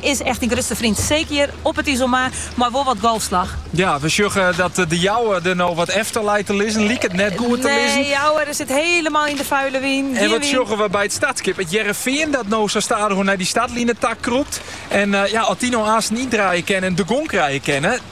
Is echt dyn grutste freon. Seker hjir op it Iselmar mei wol wat golfslach. Ja, we sjogge dat De Jouwer der no wat efter leit te lizzen. Liket net goed te lizzen. Nee, Jouwer sit helemaal yn de vuile wyn. En wat sjogge we by it startskip? It Hearrenfean dat no sa stadichoan nei dy startline ta krûpt. En ja, as dy no aansten yndraaie kinne en gong krije kinne.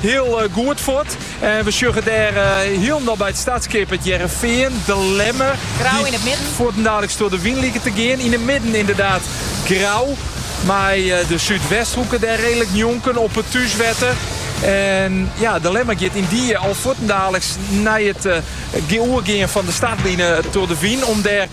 Hiel goed fuort en we sjoggen dêr hielendal by it startskip it Hearrenfean, De Lemmer. Grauw yn it midden. Fuortendaliks troch de wyn liket te gean. Yn de midden ynderdaad Grauw mei de Súdwesthoeke dêr redelijk njonken op it thúswetter. En ja, De Lemmer giet yn die al fuortendaliks nei it oergean fan de startline troch de wyn om dêr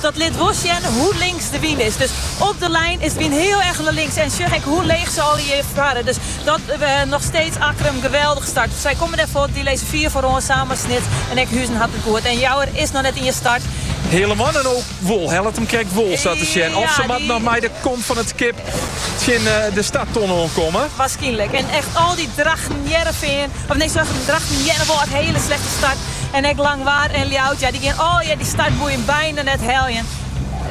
Dat lit wol sjen hoe links de wyn is. Dus op de lijn is de wyn heel erg naar links. En sjoch ek hoe leech ze alle hjir farre. Dus dat noch steeds Akkrum geweldig start. Sy komme dêr fuort, dy lizze fier foaroan, samar, Snits en ek Huzum hat it goed. En Jouwer is noch net yn 'e start. Helje him ek wol. Hellet him krekt wol sa te sjen. Of ze moatte noch mei de kop fan it skip tsjin de startton oan komme. Waarskynlik. En echt al die Drachten Hearrenfean. Op nee soarge, Drachten Earnewâld in hiele slechte start. En ek Langwar en Ljouwert, ja, die gean allegear die startboeien bijna net heljen.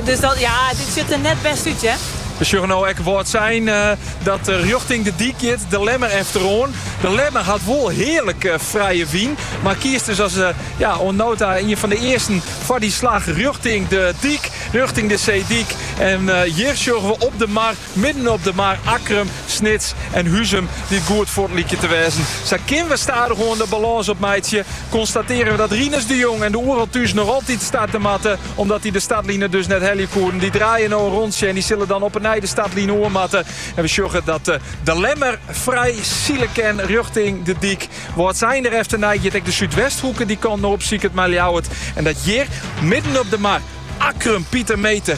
Dus dat, ja, dit ziet er net best uit, hè. We sjogge no ek Wâldsein eh, dat eh, rjochting de dyk giet. De Lemmer efteroan. De Lemmer had wol heerlijk eh, vrije wien. Maar kiest dus als ja, nota een van de eersten voor die slag richting de diek. Richting de zeediek. En hier sjoggen we op de mar Midden op de mar Akkrum, Snits en Huzum, dy't goed fuort lykje te wêzen. Sa kinne we stadichoan de balâns opmeitsje. Konstatearje we dat Rinus de Jong en de Oeral Thús noch altyd starte moatte, omdat dy de startline dus net helje koene. Dy draaie no in rondsje en dy sille dan op 'e nij de startline oer moatte. En we sjogge dat De Lemmer frij sile kin rjochting De Dyk. Wâldsein der efternei giet ek de Súdwesthoeke dy kant no op, lykas mei Ljouwert. En dat hjir, midden op de mar Akkrum, Pieter Meeter